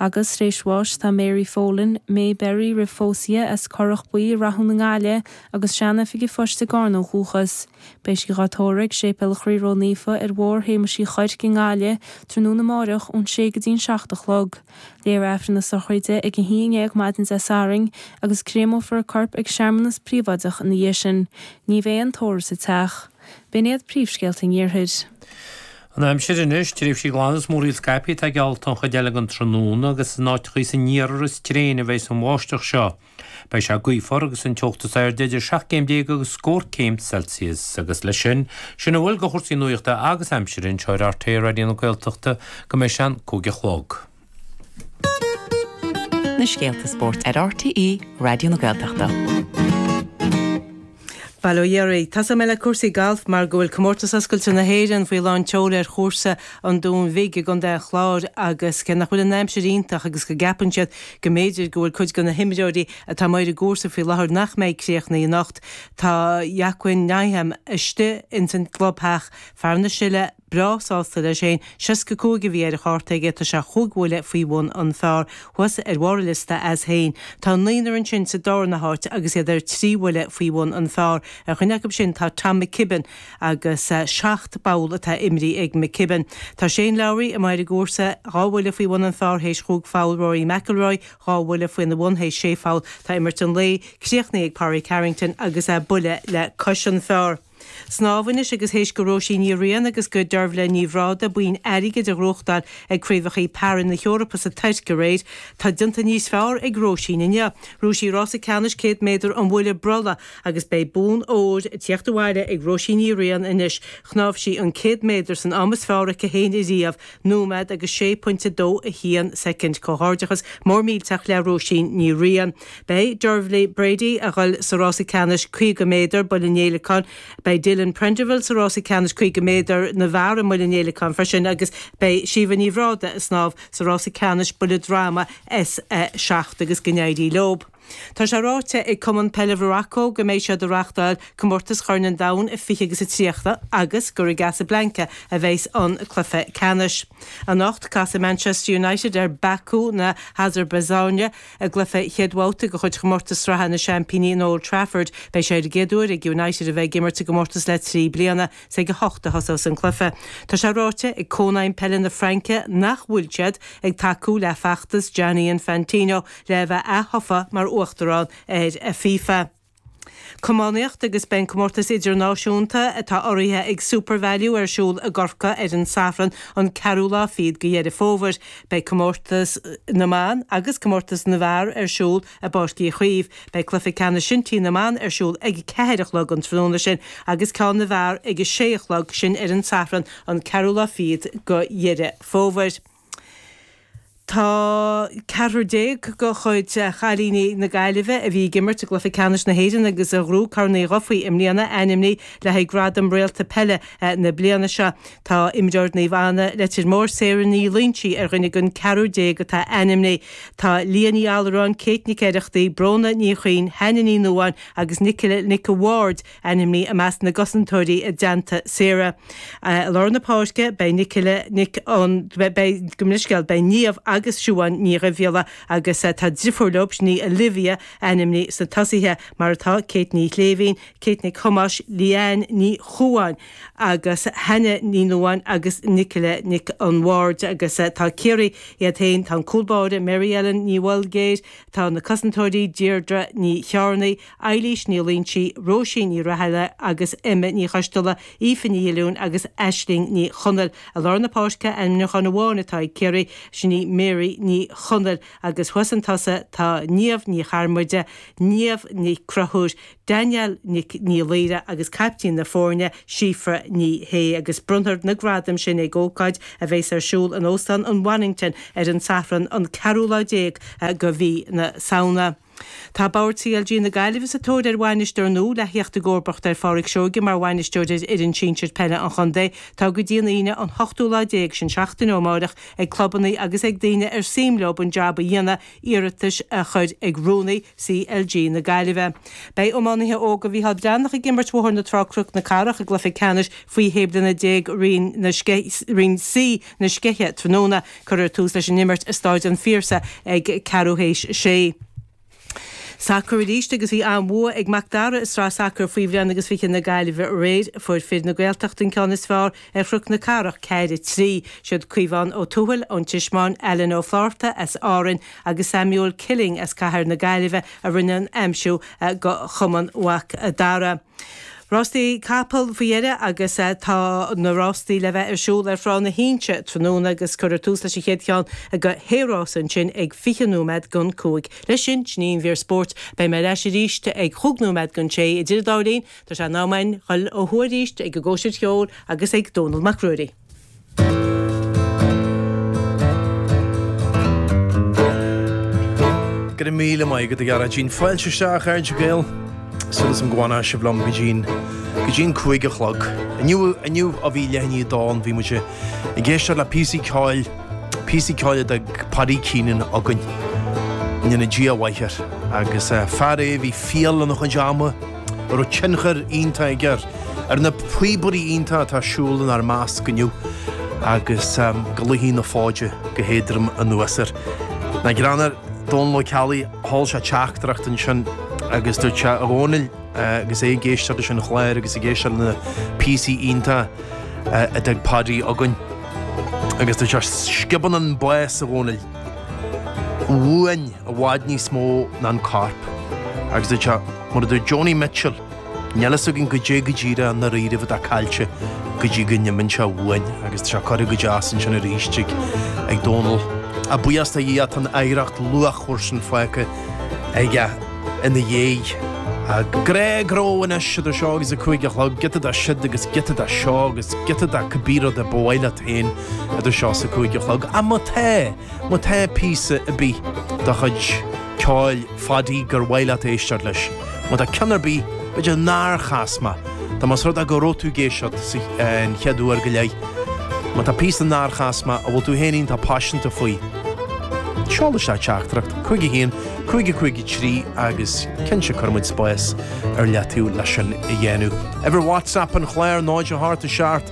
Agus, tar éis bháis, tá Mary Folan, May Berry roimh phósadh dhi, as Corrach Buí i Rathún i nGaillimh, agus Sean-Oifig an Phoist i gCarna ó dhúchas. Beidh sí dhá tórramh ag Séipéal an Chroí Ró Naofa ar Bhóthar Shéamuis Uí Chuirc i nGaillimh tráthnóna amáireach ón sé go dtí'n seacht a chlog. Léifear Aifreann na Sochraide ag a haon ndéag maidin Dé Sathairn agus créamófar a corp ag searmanas príobháideach ina dhiaidh sin. Ní bheidh aon tórramh sa teach. B'in iad príomhscéalta an Iarthair. An aimsir anois, tréimhsí glana is múraíl scaipthe atá geallta don chuid eile den tráthnóna agus is in áiteachaí san iarthar is tréine a bheas an bháisteach seo. Beidh sé gaofar agus an teocht is airde idir seacht gcéim déag agus scór céim Celsius. Agus leis sin, sin a bhfuil de chúrsaí nuachta agus aimsire anseo ar RTÉ Raidió na Gaeltachta go mbeidh sé an cúig a chlog. na scéalta spóirt ar RTÉ Raidió na Gaeltachta. Bail ó Dhia oraibh. Tosóidh mé le cúrsaí galf mar go bhfuil Comórtas Oscailte na hÉireann faoi lán tseol ar chúrsa an Dúin Bhig i gContae an Chláir agus cé nach bhfuil an aimsir iontach agus go gceapann siad go mb'fhéidir go bhfuil cuid de na himreoirí atá amuigh ar an gcúrsa faoi láthair nach mbeidh críochnaithe anocht, tá Joaquin Niemann istigh ins an gclubtheach, fear na Sile. breá sásta leis fhéin. Seasca cúig a bhí ar a chárta aige, tá sé chúig bhuille faoi bhun an phar thuas ar bharr an liosta as fhéin. Tá naonúr ansin sa dárna háit agus iad ar trí bhuille faoi bhun an phar. Ar dhuine acu sin tá Tom McKibbin agus seacht bpoll atá imrithe ag McKibbin. Tá Shane Lowry, amuigh ar an gcúrsa, dhá bhuille faoi bhun an phar th'éis chúig pholl, Rory McIlroy, dhá bhuille faoina bhun th'éis sé pholl. Tá imirt an lae críochnaithe ag Pádraig Harrington agus é buille le cois an phar. Snámh anois agus th'éis do Róisín Ní Riain agus do Deirbhle Ní Bhrádaigh boinn airgid a ghnóthachtáil ag Craobhachaí Para na hEorpa sa Tuirc aréir, tá déanta níos feárr ag Róisín inniu. Ghnóthaigh sí rása ceannais 100 méadar an bhuille brollaigh agus beidh bonn óir ag tíocht abhaile ag Róisín Ní Riain anois. Shnámh sí an 100 méadar san am is feárr aici fhéin ariamh nóiméad agus 6.21 soicind Comhghairdeachas mór millteach le Róisín Ní Riain. Beidh Dearbhaile Brady a ghoil sa rása ceannais 50 méadar Buille an Fhéileacáin Beidh Dylan Prenderville sa rása ceannais 50 méadar na bhfear i mBuille an Fhéileacáin freisin agus beidh Síomha Ní Bhrádaigh a snámh sa rása ceannais Buille Droma S7 agus go n-éirí leob. Tá sé ráite ag Cumann Peile Mharacó go mbeidh siad a reachtáil Comórtas Chorn an Domhain a 20 agus a 30 agus gur i gCasablanca a bheidhs an cluiche ceannais. Anocht casfaidh Manchester United ar Baku na hAsarbaiseáine i gcluiche chéad bhabhta de chuid Chomórtas Sraithe na Seaimpíní in Old Trafford. Beidh sé ar an gcéad uair ag United a bheith ag imirt sa gcomórtas le trí bliana. Is ag a hocht a thosós an cluiche. Tá sé ráite ag Cónaidhm Peile na Fraince nach bhfuil siad ag tacú le feachtas Gianni Infantino le bheith ath-thofa mar Uachtarán ar FIFA. Camánaiocht agus beidh an Comórtas Idirnáisiúnta atá urraithe ag Supervalu ar siúl i gCorcaigh ar an Sathran an ceathrú lá fiad go Dheireadh Fómhair. Beidh Comórtas na mBan agus Comórtas na bhFear ar siúl i bPáirc Uí Chaoimh. Beidh Cluiche Ceannais Shinty na mBan ar siúl ag a ceathair a chlog an tráthnóna sin agus ceann na bhFear ag a sé a chlog, sin ar an Sathran an ceathrú lá fiad go Dheireadh Fómhair. Tá ceathrar déag de chuid chailíní na Gaillimhe a bhí ag imirt i gCluiche Ceannais na hÉireann agus a ghnóthaigh Corn Uí Dhufaí i mbliana ainmnithe le haghaidh Gradam Réalta Peile na Bliana seo. Tá imreoir Naomh Anna, Leitir Móir, Sarah Ní Loingsigh ar dhuine den ceathrar déag atá ainmnithe. Tá Leah Ní Allaráin, Kate Nic Oireachtaigh, Bróna Ní Chuinn, Hannah Ní Nuáin agus Nicola Nic an Bhaird ainmnithe i measc na gcosantóirí i dteannta Sarah. I lár na páirce beidh Nic, gabh mo leithscéal, beidh Niamh agus Siobhán Ní Dhuibhghiolla agus tá driofúr leo, sin í Olivia, ainmnithe sna tosaithe mar atá, Kate Ní Shléibhín, Kate Nic Thomáis, Leanne Ní Chomhdhain agus Hannah Ní Nuadháin agus Nicola Nic an Bhaird agus tá Ciarraí iad féin, tá an cúl báire Mary Ellen Ní Bholguidhir, tá na cosantóirí Deirdre Ní Chearnaigh, Eilís Ní Loingsigh, Róisín Ní Rathaille agus Emma Ní Choisteala, Aoife Ní Dhuilleáin agus Aisling Ní Chonaill. I lár na páirce, ainmniúchán amháin atá ag Ciarraí, sin í Mary Ní Chonaill. Agus thuas sna tosaithe tá Niamh Ní Charmuide, Niamh Ní Chonchúir, Danielle Ní Laoire agus caiptín na foirne, Síofra Ní Shé. Agus bronnfar na gradaim sin ag ócáid a bhéas ar siúl in Óstán an Bonnington ar an Sathran an ceathrú lá déag go Mhí na Samhna. Tá Bord CLG na Gaillimhe sa tóir ar bhainisteoir nua le theacht i gcomharbacht ar Phádraig Seoige mar bhainisteoir ar fhoireann sinsir peile an chontae. Tá go dtí an Aoine an hochtú lá déag, sin seachtain ó amáireach, ag clubanna agus ag daoine ar suim leo an jab a dhéanamh iarratais a chur ag Rúnaí CLG na Gaillimhe. Beidh iománaithe óga Mhícheál Breathnach ag imirt Bhóthar na Trá-Cnoc na Cathrach i gcluiche ceannais faoi shé bliana déag Roinn C na Scéithe tráthnóna. Cuirfear tús leis an imirt i Stáid an Phiarsaigh ag ceathrú théis a sé. Sacar arís agus bhí an-bhua ag Mac Dara i Sraith Sacair Faoi bhliain agus fiche na Gaillimhe aréir. Fuair fir na Gaeltachta an ceann is fearr ar Chnoc na Cathrach, ceathair trí. Siad Caomhán Ó Tuathail ón Tismeáin, Alan Ó Flatharta as Árainn agus Samuel Killing as Cathair na Gaillimhe a rinne an aimsiú go Chumann Mhac Dara. Rástaí capall faoi dheireadh agus tá na rástaí le bheith ar siúl ar Thrá na hInse tráthnóna agus cuirfear tús leis an chéad cheann de shé rása ansin ag 20 nóiméad don cúig. Leis sin, sin í an mhír spóirt. Beidh mé ar ais arís ag cúig nóiméad don sé. Idir an dá linn tá sé in am againn dul ó thuaidh arís ag an gcóisir cheoil agus ag Dónall Mac Ruairí. Go raibh míle maith agat a Ghearóidín. Fáilte isteach a chairde Gael. Súil agam go bhfanas sibh liom go dtí go dtí'n cúig a chlog. Inniu inniu a bhí le... ní dán bhí muid ag éisteacht le píosaí ceoil píosaí ceoil a d'fhág Paddy Keenan againn. Go ndéana Dia a mhaith air. Agus fear é a bhí fial lena chuid ama. a raibh tionchar iontach aige ar na píobairí iontacha atá ag siúl inár measc inniu agus go luífidh na fóide go héadrom anuas air. Nach greannmhar, Dónal Ó Ceallaigh, sheol sé teachtaireacht ansin agus dúirt sé, 'A Dhónaill, agus é ag éisteacht leis an chláir agus ag éisteacht le na píosaí iontacha a d'fhág Paddy againn, agus dúirt sé, 'Sciobann an bás, a Dhónaill, uainn i bhfad níos mó ná an corp. Agus dúirt sé. Mar a dúirt Joni Mitchell, níl a fhios againn goidé go díreach i ndáiríribh atá caillte go dtí go n-imíonn sé uainn agus tá sé curtha go deas ansin arís ag Dónall. A bhuíochas do Dhia go bhfuil, tá an oidhreacht luachmhar sin fágtha aige ina dhiaidh. Go leor leor anois idir seo agus a cúig a chlog, giota de siúd agus giota de seo agus giota de cibé rud a ba mhaith leat féin idir seo is a cúig a chlog. Á, má tá, má tá píosa ar bith de chuid ceoil. Phaddy, gur mhaith leat éisteacht leis, má tá ceann ar bith, b'fhéidir nár chas muid, nó más rud é go raibh tú ag éisteacht sa, an chéad uair go leith, má tá píosa nár chas muid a bhfuil tú féin iontach paiseanta faoi, seol isteach teachtaireacht 5 1 553 agus cinnte cuirfimid spás ar leataobh leis sin a dhéanamh. Uimhir WhatsApp an chláir 0 8 7.